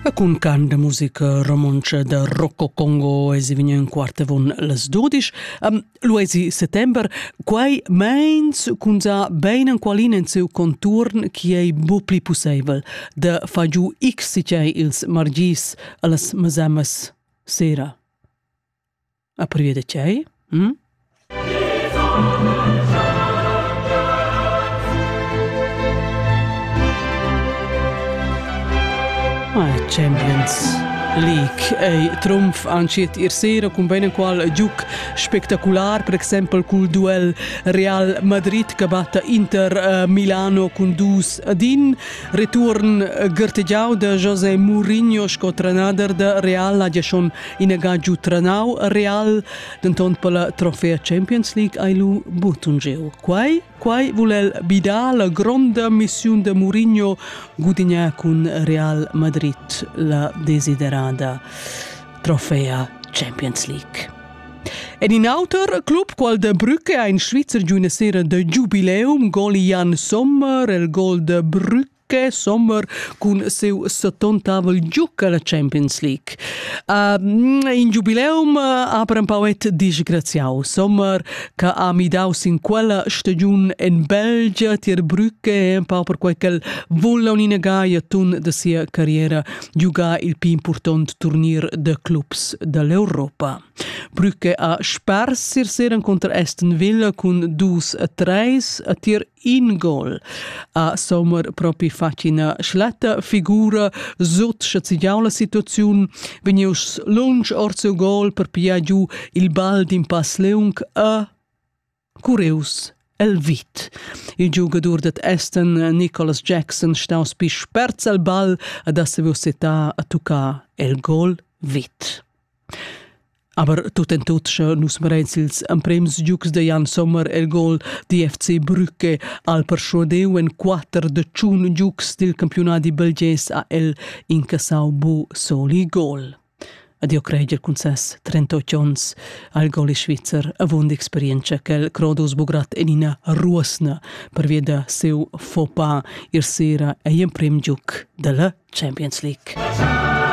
E cun can de musica romontscha da Rocco Congo esi vegni en quart avon las dudisch. Um, lu esi settember, quei meins cun sa bein enqualin en seu conturn chi ei bu pli pusseivel da fa giu x si tgei ils margis allas masamas sera. A prieu da tgei? Hm? Champions League ei trumf antschiet ir sera cun bein enqual giuc spectacular, per exempel cul duel Real Madrid che batta Inter eh, Milano cun dus ad in, return gertegiau de José Mourinho sco trenader de Real ha gia schon Ina ga giu trenau Real, denton per la trofea Champions League hai lu buttungeu. Quai, quai vul el bidar la gronda missiun de Mourinho gudignar cun Real Madrid la desiderada trofea Champions League. Ed in auter club, qual de Brücke, ha in Svizzer giu una sera de giubileum, gol Jan Sommer, il gol de Brücke che sommer cun siu settontavel giuc alla Champions League. Uh, in giubileum ha per empauet disgraziau sommer che ha midau sin quella stagiun en Belgia tier Brücke empau per quei ch'el vulla unina gaia tun de sia carriera giugar il più important turnir de clubs dall'Europa. Brücke ha spers sir seren contra Aston Villa cun dus a treis a tier in gol a sommer propi fatg ina schlatta figura sut sche zignau la situaziun vegnius lunsch ord seu gol per pigliar giu il ball d'in pass leung a Cureus el vit. Il giugadur dat Aston Nicholas Jackson staus pi spert al ball ad ha saviu setar a tuccar el gol vit. Aber tut en tut sche nus merein sils emprems giugs de Jan Sommer el gol di FC Brücke al perschuadeu en quater de tschun giugs dil campiunadi belgés ha el incassau bu soli gol. Adio Kreger cun ses 38 ons al goli svizzer avund experienza quel Crodus Bugrat en ina ruosna per via da seu Fopa ir sera ei emprem giuc della Champions League.